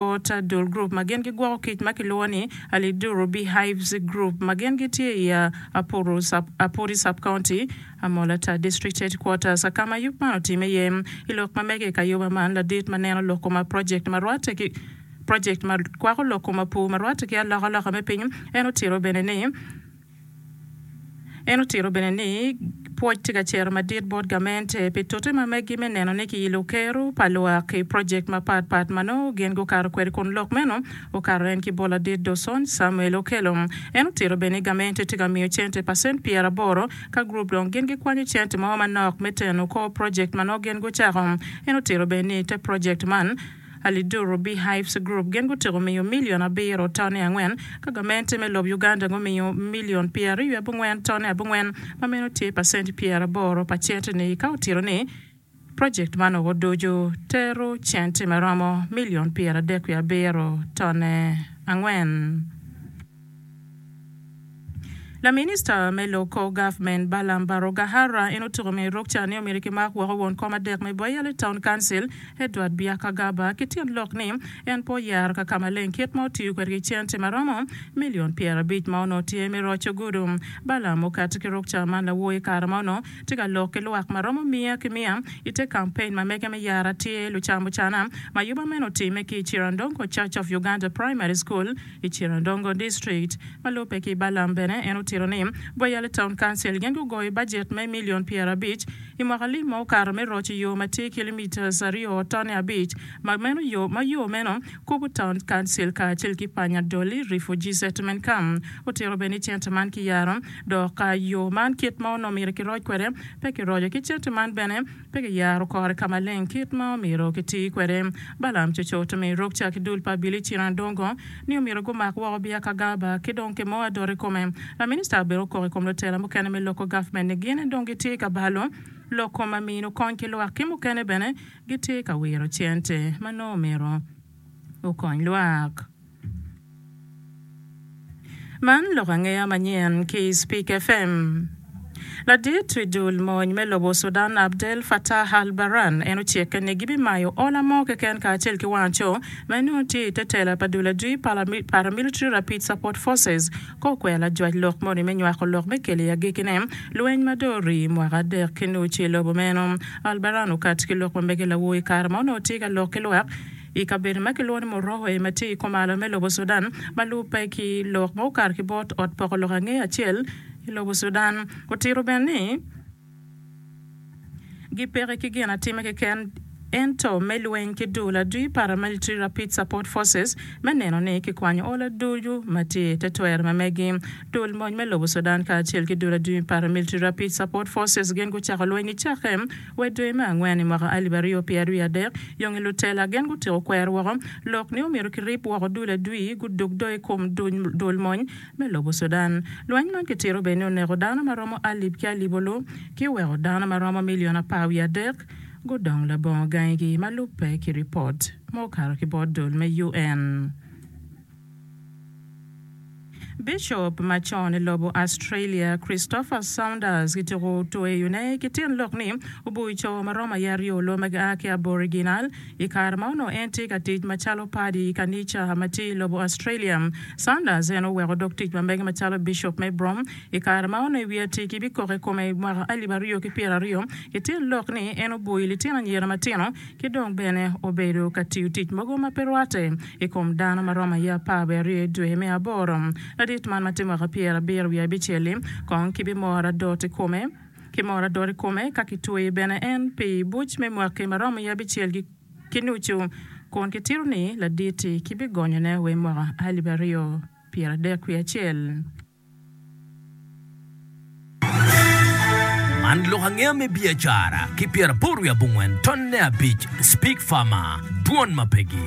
Bot dul gurup ma gin gigwoko kic ma kilwongo ni Aliduru Beehives Group ma gin gitye i Apuru, Apuri Sub-County, Amolata District Headquarters, ka ma yub man otimme iye. I lok ma mege i kayoba man, ladit ma neno lok koma project ma rwatte ki project ma kwako lok koma pur ma rwatte ki alokaloka me piny, en otito bene ni, En otito bene ni pwoc tye ka cito madit bot gamente pi tute ma megi me neno ni kiyilo kero pa lwak i project mapat pat ma nongo gin gukato kwede kun lok meno okato en ki bol adit do Sony Samuel okelo. En otito bene ni gamente tye ka miyo cente pacent pyera aboro ka group dong gin gikwanyo cente mo manok me teno kor project ma nongo gin gucako. En otito bene ni te project man. Aliduru Bee Hives Group gin gutyeko miyo milion abiro toni angwen, ka gamente me lob Uganda gumiyo milion pyeraryo i abongwen toni abongwen, ma meno tye pacent pyeraboro pa cente ni, ka otito ni project man o oducu tero cente ma romo milion pyeradek wiye abiro tone angwen. Laminista me lok kor gavment Balaam Barugahara en otuko me ruk ca ni omyero kimak woko won kom adek me Boyale Town Council, Edward Byakagaba, ki tyen lok ni en pe oyero ka ka maleng kit ma otiyo kwede ki cente ma romo milion pyerabic ma onongo tye me roco gudo. Balaam okati ki ruk ca man lawo i kare ma onongo tye ka lok ki lwak ma romo miya ki miya i te kampein ma mege me yero atir lucamucana ma yuba meno otimme ki i Cirandongo Church of Uganda Primary School I Cirandongo district ma lubbe ki Balam bene en otito ni Gwayali Town Council gin gugoyo bajet me milion pyerabic I mwaka lim ma okato me roco yo ma tye kilometres aryo tone abic ma meno yo ma yo meno kubo Town Council kacel ki Panya Dolly Refugee Settlement Camp. Otito bene ni cente man kiyaro dok ka yo man kit ma onongo myero kiroc kwede pe kiroco ki cente man bene Pe giyaro kore ka maleng kit ma omyero giti kwede. Balaam cocoto ni Rokca ki dul pa Abili cen adongo ni omyero gumak woko biya ka Gaba ki dong ki mo adot i kome. Laminista Abili okok i kom lutela mukene me loko gavmen ni gin dong gitye ka balo lok kom ma mino kony ki lwak ki mukene bene gitye ka wiro cente ma nongo omyero okony lwak. Man lok angeya manyen ki i Speak FM. Ladit i dul mony me lobo Sudan Abdel Fattah al-Burhan en ocikke ni gibimayo ola mo keken kacel ki wanco ma en nongo tye i te tela pa dul adwi pa Paramilitary Rapid Support Forces kor kwena lajwac lok moni me nywako lok me kelo i agikine lweny ma dong orii mwaka adek ki nucu i lobo meno. Al-Burhan okato ki lok ma mege lawo i kare ma onongo tye ka lok ki lwak I kabedo ma kilwongo ni Moroe ma tye i komalo me lobo Sudan ma lubbe ki lok ma okato ki bot ot poko lok angee acel i lobo Sudan, otito bene ni, gi peke ki gin atime keken ento me lweny ki dul adwi Paramilitary Rapid Support Forces me neno ni kikwanyo ol aducu ma tye i te twero me megi. Dul mony me lobo Sudan kacel ki dul adwi Paramilitary Rapid Support Forces gin gucako lweny icake Wa i dwe me angwen i mwaka alip aryo pyeraryo i adek, yonge lutela gen gutiko kwero woko lok ni omyero kirib woko dul adwi gudug do i kom dul mony me lobo Sudan. Lweny man kitito bene ni oneko dano ma romo alip ki alipolu ki oweko dano ma romo milion apar wiye adek gudong labongo gangigi, ma lubbe ki ripot ma okato ki bot dul me UN. Bicop macon i lobo Australia, Christopher Saunders kityeko tweyone ki tyen lok ni obuc co ma romo aye aryo loo ma gia ki Aboriginal. I kare ma onongo en tye ka tic macalo padi i kanica ma tye i lobo Australia, Saunders en oweko dog tic ma mege macalo bicop me Brom i kare ma onongo i wi atir-ki bikoko i kome i mwaka alip aryo ki pyera aryo ki tyen lok ni en obuc litino anyira matino ki dong bene obedo ka tiyo tic mogo ma pe rwatte. i kom dano ma romo aye apar wiye aryo i dwe me aboro. Ladit man ma tye mwaka pyerabiro wiye abicel-li kong kibimor adot i kome, kimor adot i kome ka kitweyi bene en pi buc me mwaki ma romo wiye abicel ki nucu, kun kitito ni ladit-ti kibigonyone wai mwaka alip aryo pyerabadek wiye acel. Man lok angeya me biacara ki pyeraboro wiye abongwen tonne abic Speak Farmer, Dwon ma pegi.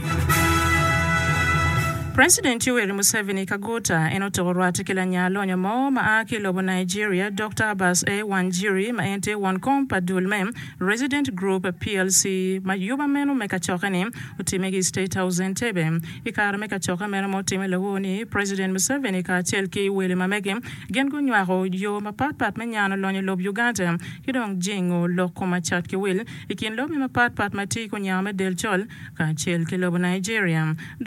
President Yoweri Museveni Kaguta en otoko rwate ki lanya lonyo mo ma a ki lobo Nigeria Doctor Abbas A. Wanjiri ma en tye won kom pa dul me Resident Group plc ma yuba meno me kacokke-ni otimme ki i State House Entebbe. I kare me kacokke meno ma otimme lawo ni, President Museveni kacel ki wele ma mege gin gunywako yo mapat pat me nyano lonyo lob Uganda ki dong jingo lok kom acat ki wil ikin lobbe mapat pat ma tye ki onya me del col kacel ki lobo Nigeria.